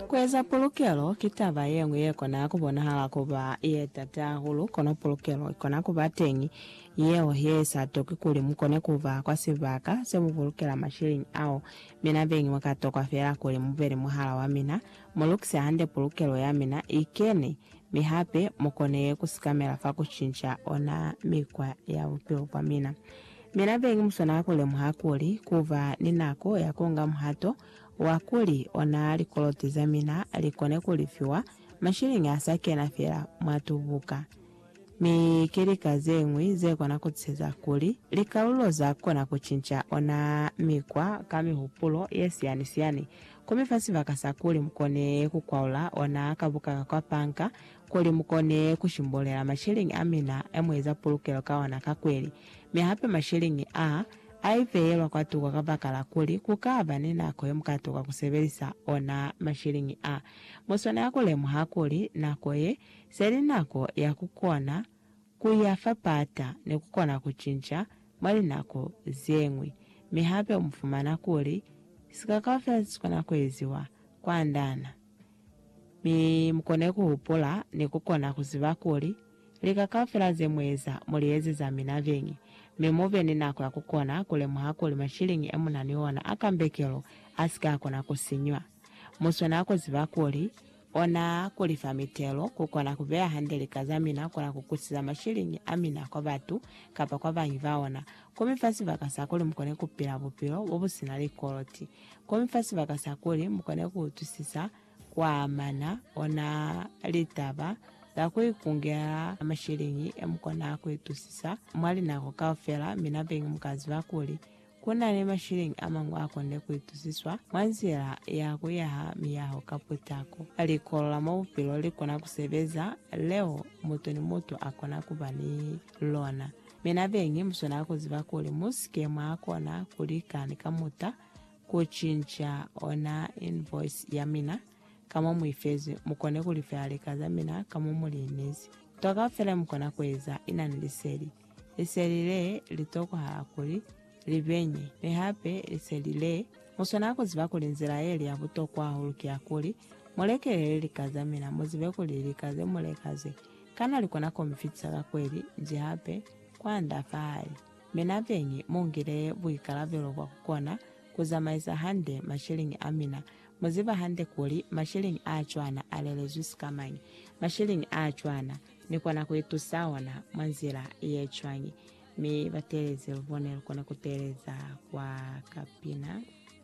Kueza pulukelo ki taba yeñwi yekona kubonahala kuba yetata hahulu, kono pulukelo ikona kuba teñi yeo yeisa toki kuli mukone kuba kwa sibaka semupulukela masheleñi ao. Mina beñi mwakatokwa feela kuli mube ni muhala wamina, mulukise hande pulukelo yamina ikene, mi hape mukone kusikamela fa kucinca ona mikwa ya bupilo bwamina. Mi nabeñi muswanela kulemuha kuli kuba ni nako ya kuunga muhato wa kuli ona likoloti zamina likone kulifiwa masheleñi asa kena feela mwa tubuka. Mi ki lika zeñwi zekona kutuseza kuli likalulo zakona kucinca ona mikwa ka mihupulo yesiyani-siyani, komi fa sibaka sa kuli mukone kukwaula ona kabuka ka kwa panka, kuli mukone kushimbulela masheleñi amina emueza pulukelo ka ona ka kweli, mi hape masheleñi aa aiveyelwa kwatuko kabakala kuli kukaba ni nako yemukatuka kusebelisa ona masheleñi aa. Muswanela kulemuha kuli nako ye, seli nako ya kukona kuya fa pata ni kukona kucinca mwa linako zeñwi, mi hape mufumana kuli sika kaufela sesikona kueziwa kwandana. Mi mukone kuhupula ni kukona kuziba kuli, lika kaufela zemueza, mulieze za mina beñi, mi mube ni nako ya kukona kulemuha kuli mashiliñi emunani ona a kambekelo asike akona kusinywa. Muswana kuziba kuli, ona kulifa mitelo, kukona kubeya hande lika za mina, kona kukusiza mashiliñi amina kwa batu kapa kwa bangi baona, ku mifa sibaka sakuli mukone kupila bupilo bobusina likoloti. Kono fa sibaka sa kuli mu kone ku utwisisa kwa amana ona litaba za ku ikungela masheleñi e mu kona ku itusisa mwa linako kaufela, mi na beñi mu ka ziba kuli ku na ni masheleñi a mañwi a konile ku itusiswa mwa nzila ya ku yaha miyaho ka putako. Likolo la mwa bupilo li kona ku sebeza leo mutu ni mutu a kona ku ba ni lona. Mi na beñi muswanela kuziba kuli musike mwakona kulika ni kamuta kucinca ona invoice yamina ka mo muifezwi, mukone kulifela lika zamina ka mo muliinezi. Nto kaufela yemukona kueza inani liseli. Liseli le litokohala kuli libenye, mi hape liseli le. Muswanela kuziba kuli nzila yeli ya butokwa hahulu ki yakuli mulekelele lika zamina, muzibe kuli lika zemuleka ze Kana likona komfitisa ka kweli nji hape kwanda fahae? Mi nabeñi mungile buikalabelo bwa kukona kuzamaisa hande masheleñi amina. Muziba hande kuli masheleñi aacwana alelezwi sikamañi. Masheleñi aacwana nikona kuitusa ona mwa nzila yecwañi? Mi batelezi lubone lukone kuteeleza kwa kapina.